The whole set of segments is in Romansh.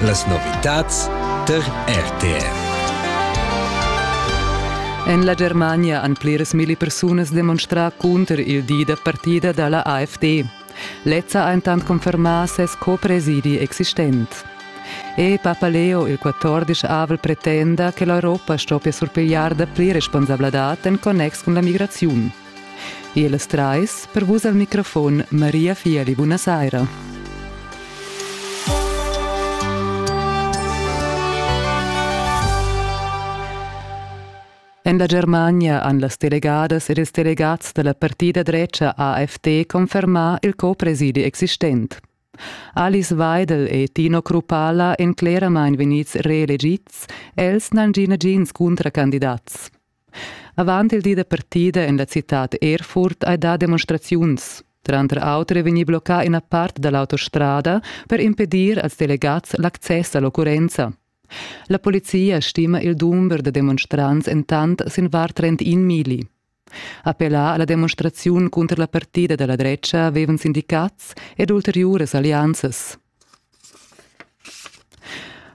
Las novitads tar RTR. En la Germania han pliras milli persunas demonstrà cunter il di da partida da la AfD. Lezza ha intant confermà ses co-presidi existent. E Papaleo, il 14 avril, pretenda che l'Europa stoppia surpigliar dapli responsabladad en connex cun la migraziun. Ellas trais per vus al microfon Maria Fieli. Buna saira. En la Germania han las delegadas ed ils delegats da la partida drecha AFD confermà il co-presidi existent. Alice Weidel e Tino Krupala èn cleramain vegnids reelegids, els n'han gì nagins cuntracandidats. Avant il di da partida en la citad Erfurt hai dà demonstraziuns. Tranter auter è vegnì bloccà ina part da l'autostrada per impedir als delegads l'access a l'occurrenza. La polizia stima il dumber da demonstrants entant sin var 31 mili. Appellà a la demonstraziun cunter la partida da la drecha avevan sindicats ed ulteriuras allianzas.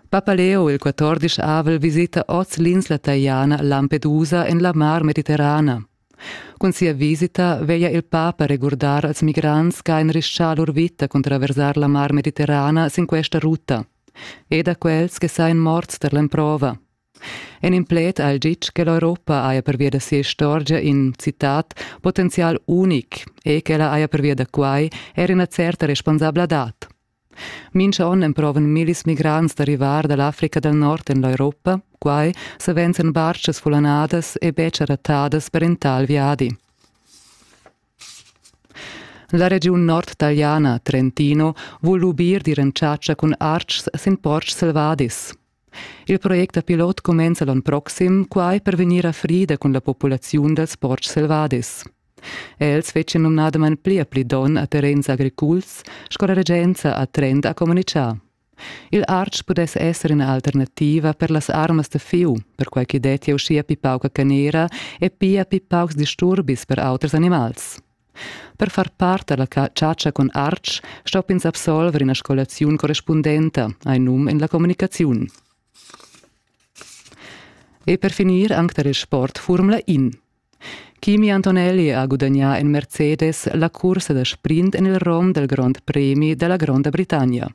Papaleo il quatordisch avel visita oz l'insla taliana Lampedusa en la Mar Mediterrana. Cun sia visita veglia il papa regurdar als migrants che han rischà lur vita cun traversar la Mar Mediterrana sin questa ruta e da quels che sain morts tar l'emprova. En in pled ha el ditg che l'Europa haja pervia da sia istorgia in citat potenzial unic e ch'ella haja pervia da quai er ina certa responsabladad. Mintga onn emprovan millis migrants da rivar da l'Africa dal Nord en l'Europa, quai savens en bartgas fullanadas e betg rattadas per in tal viadi. La regiun nordtaliana Trentino vul lubir d'ir en chatscha cun artgs sin portgs selvadis. Il project da pilot cumenza l'onn proxim, quai per vegnir a frida cun la populaziun dals portgs selvadis. Els fetschan numnadamain pli e pli donn a terrens agriculs, sco la regenza a Trend ha communitgà. Il artg pudess esser ina alternativa per las armas da fiu, perquai ch'i dettia uschia pli pauca canera e pia pli paucs disturbis per auters animals. Per far part alla chatscha cun artg stopp'ins absolver ina scolaziun correspundenta, hai num en la communicaziun. E per finir anc tar il sport Formula In. Kimi Antonelli ha gudagnà en Mercedes la cursa da sprint en il rom del Grand Premi della Gronda Britannia.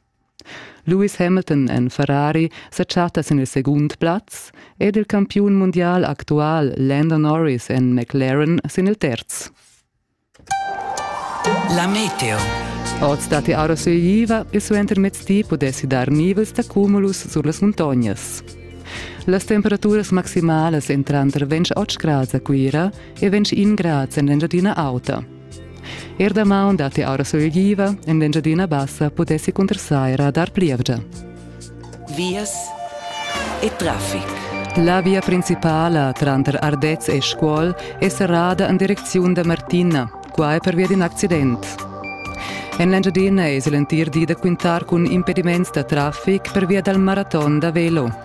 Lewis Hamilton en Ferrari sa chatta sin il segund plaz ed il campiun mundial actual Lando Norris en McLaren sin il terz. La meteo. Oz datti aura sueiva e suentermezdi pudessi dar nivels da cumulus sur las muntognas. Las temperaturas maximalas entran tra 28 grads a Cuira e 21 grads en l'Engiadina Auta. Er damaun datti aura sulegliva, en l'Engiadina Bassa pudessi cunter saira dar plievgia. Vias e traffic. La via principala tranter Ardez e Scuol è serrada en direcziun da Martina, quai pervia d'in accident. En l'Engiadina èsi l'entir di da quintar cun impediments da traffic pervia dal maraton da velo.